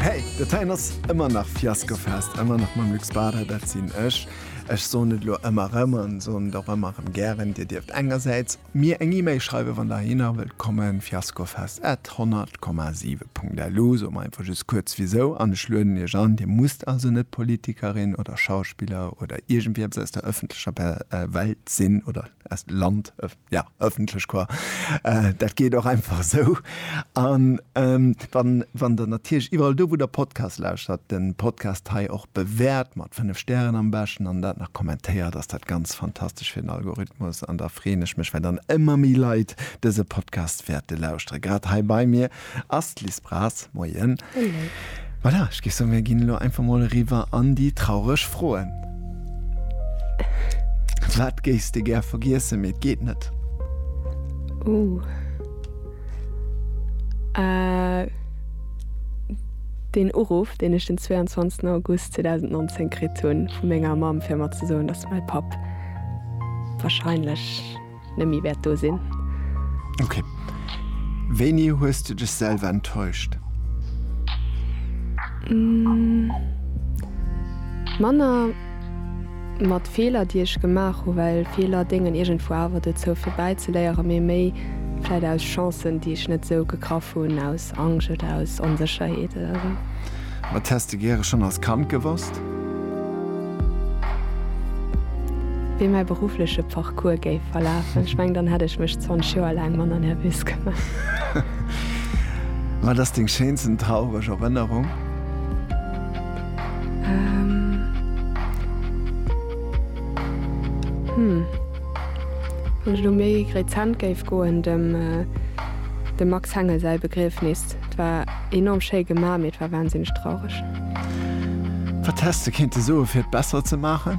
Hey, dat heien ass ëmmer nach Fiaskofest, ëmmer nach mam Luc Spada, dat sinn ech. Ech soen et elo ëmmer erëm an soen et och ëmmer erëm gären, Dir dierft engersäits mir eng E-Mail schreiwen, wann Der hinner wëllt kommen, fiaskofest at 100,7 Punkt LU. Soe mer einfach just kuerz wisou an ech lueden Iech an. Dir musst also net Politikerin oder Schauspiller oder iergendwieps aus der ëffentlecher Welt sinn oder aus Land, Ja, ëffentlech Choir, dat geet och einfach esou. An wann Der natierlech iwwerall do, wou Der Podcasts lauschtert, de Podcast hei och bewäert, mat fënnef Stären am beschten, an dat nach kommentéiert, ass dat ganz fantastesch fir den Algorithmus. An da freeën ech mech, well dann ëmmer méi Leit dëse Podcast wäerte lauschteren, grad hei bei mir. Ass d'Liz Braz. Moien. Hallo. Voilà, ech géif soen, mir ginn elo einfach mol eriwwer an déi traureg Froen. Wat géifs de gär vergiessen, mee et geet net? Ouh. Äh, deen Uruff, deen ech den 22. August 2019 kritt hunn vu menger Mamm, fir mer ze soen, dass mäi Papp wahrscheinlech. net méi wäert do sinn. Ok. Wéini hues de dech selwer enttäuscht? Manner mat Feeler, déi ech gemaach hunn, well Feeler déngen iergendwou awer dozou fir bäizeléieren, mee méi vläit aus Chancen, déi ech net esou gegraff hunn, aus. aus Angscht oder aus Onsécherheet oder esou. Wat häss de gäre schonn als Kand gewosst? Wéi mäi beruffleche Parcours géif verlafen. Ech mengen, dann hätt ech mech 20 Joer laang manner nervös gemaach. Wat ass deng schéinsten traureg Erënnerung? Hm. Wann ech elo méi rezent géif goen, dem Max Hengel säi Begriefnis. Et war enorm schéi gemaach, mee et war wahnsinneg traureg. Wat häss de kéinte soe fir et besser ze maachen?